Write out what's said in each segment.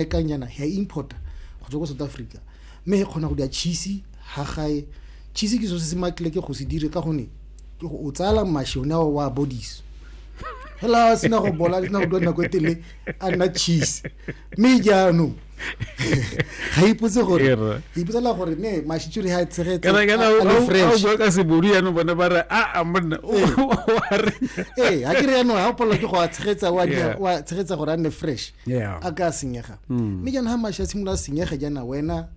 e kang yana ya importa go tswa ko south africa mme e kgona go dira cheese ha gae cheese ke so se se makile ke go se dire ka gone ke go o tsala mašwi one ao wa bodisa hela sena go bola sena go dua nako e tele a nna cheese mme jaanong ga ipotse gore ipotsela gore ne mashitsuri ha tshegetseaobua ka sebodi yanong bone ba re aa monna ee ga ke re yanong ga o palelwa ke go a tshegetsa wa tshegetsa gore a nne fresh yeah. a ka senyega mm. mme jaanong ga mashe a simolola senyege jaana wena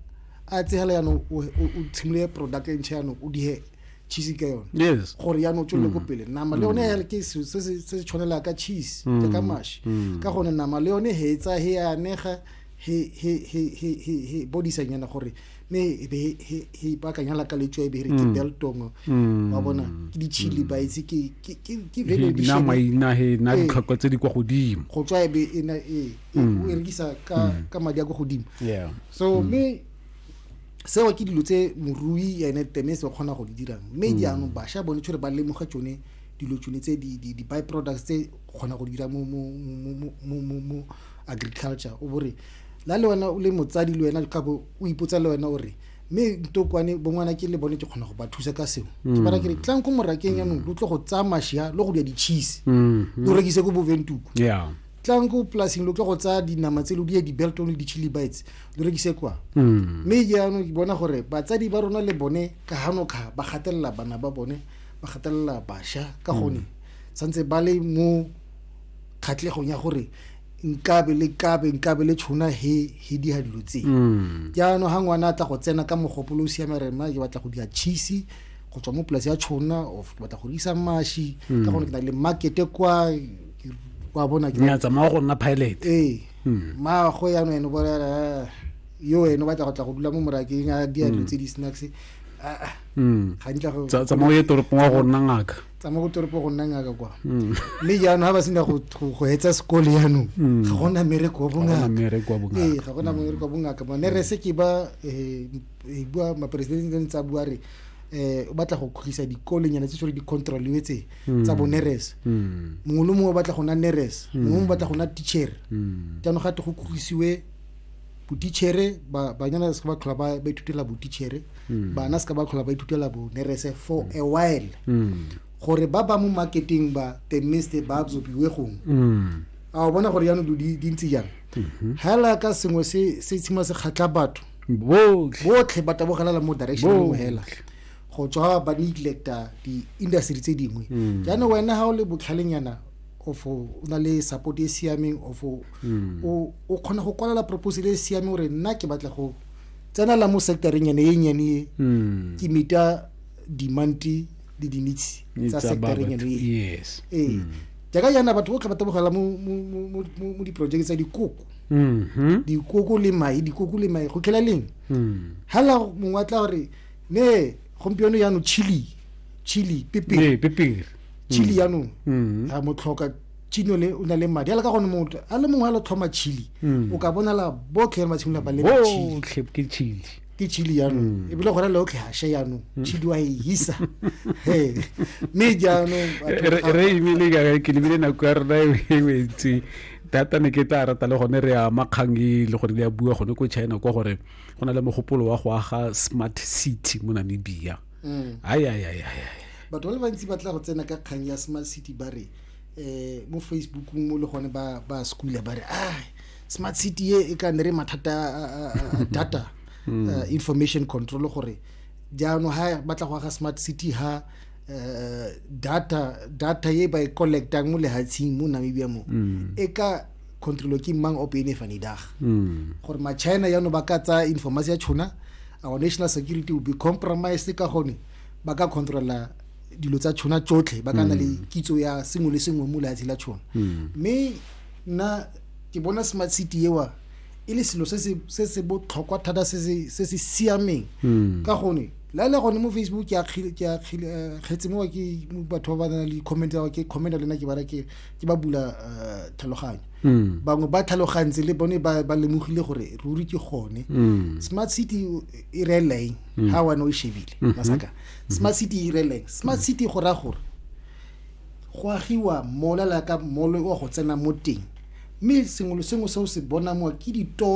a tsegela jaanong o tshimolole product e ntšha jaanong o dihe cheese ka yone yes gore ya no tswele mm. go pele nama le yone mm. ke se se se tshwanela ka cheese ke mm. ka mash ka gone nama le yone he tsa he ya nega he he he he he body sa nyana gore mme e be he baakanya la ka letswa e be re ke mm. beltong mm. wa bona ke di-chili ba itse ke valuationmaina he na eh. ditlhokwa tse di kwa godimo go tswa e be e, e, e mm. rekisa ka madi a kwa godimo so mme seo ke dilo tse morui ene teme se kgona go di dirang mme jaanong bašwa bone tshwere ba lemoga tsone dilo tsone tse di-by products tse kgona go dira mo agriculture o bore la le wena o le motsadi le wena gape o ipotsa le wena o re mme ntokwane bongwana ke le bone ke kgona go ba thusa ka seo ke mm. bara kere tlang ko morakeng yanong lo tlo go tsaya mashia lo go dira ditšhise mm-hmm. lo rekise ko boventuku tlang ko polasing lo tlo go tsaya dinama tse lo die di-belton le di-chili bites lo rekise kwa mm. mme jaanong ke bona gore batsadi ba rona le bone ka hanokga ba gatelela bana ba bone ba gatelela basha ka gone mm. santse ba le mo kgatlhegong ya gore nkabe le kabe nkabe le tshona he he di ha dilo tse mm. jaanong ha ngwana a tla go tsena ka mogopolo o siame re mma ke batla go dira cheese go tswa mo polasi ya tshona of ke batla go isa mashi ka mm. gone ke na le markete kwa wa bona ke tsamaya go nna pilot ee mm. maagwe yanong ene bolela yo ene o batla go tla go dula mo morakeng a di a dilo tse di snacks ga ntla go tsamaya ye toropong wa go nna ngaka tsamaya ko toropo go nna ngaka kwa mm. mme jaanong ga ba sena go etsa sekole jaanong mm. ga gona mereko wa bongaka ee ga gona mereko wa mm. bongaka bone re se ke ba eh, eh, bua maperesidente ne tsa bua re eh o batla go khutlisa dikolenyana tse sore di-controliwe tse tsa bo neres mongwe le mongwe o batla go na neres mongwe o batla go na teacher jaanong ga te go khutlisiwe botitšhere banyana se ka ba tlhola ba ithutela botitšhere hmm. bana se ka ba tlhola ba ithutela bonerese for a while hmm. gore ba ba mo marketing ba the mist ba absorbiwe gongwe hmm. a o bona gore yaanong do di ntse jang mhm. hela ka sengwe se se tshima se kgatlha batho botlhe ba tabogelela mo direction mo hela go tswa ba neglecta di-industry tse dingwe jaanong wena ga o le botlhalenyana of o na le support e siameng of hmm. o o kgona go kwalela proposal e siame gore nna ke batla go tsenela mo sectoreng ene e nyane e hmm. ke mita dimanti le dinitsi tsa sectoreng ene e ee hmm. jaaka yana batho botlhe ba tabogela mo diprojeke tsa dikoko mm-hmm. dikoko le mai dikoko le mai go tlhela leng hela mongwe a tla gore ne gompieno yano chili chili pepere chili yaanong a motlhoka chino le o na le madi ala ka gone motho a le mongwe a lo tlhoma chili hmm. o ka bonala botlhe ba tshimolola ba lema chili ke chili ke chili jaanong hmm. ebile gona le otlhe hashe jaanong hmm. chili wa e hisa mme jaanong re ebile ka ke lebile nako ya rona e wetse thata ne ke tla rata le gone re ama kgang e le gore di a bua gone ko china kwa gore go na le mogopolo wa go aga smart city mo namibia mm. ai ai ai ai batho ba le bantsi ba tla go tsena ka kgang ya smart city ba re um mo facebookong mo le gone ba ba schoola ba re a smart city e e ka ne re mathata a data mm. uh, information control gore jaanong ha ba tla go aga smart city ha uh, data data e ba e collectang mo lehatsheng mo namibia mo mm. e ka controlo ke mang ope ene fane dag hmm. gore ma china ya no ba ka tsa informasi ya chona our national security will be compromised ka gone ba ka controlla dilo tsa chona tsotlhe ba ka na le hmm. kitso ya sengwe le sengwe mo lehatshe la chona hmm. mme nna ke bona smart city ewa e le selo se se botlhokwa thata se se siameng ka gone la le gone mo facebook ke a kgetse eh, mo ke batho ba ba na le comment ke comment le nna ke bara ke ke ba bula uh, tlhaloganyo mm. bangwe ba tlhalogantse le bone ba, ba lemogile gore ruri ke gone mm. smart city e reeleng mm. ga wane o e shebile mm -hmm. masaka mm-hmm. smart city e reeleng smart mm. city go raya gore go agiwa mola la ka molo wa go tsena mo teng mme sengwe le sengwe se o se bonang wa ke ditoro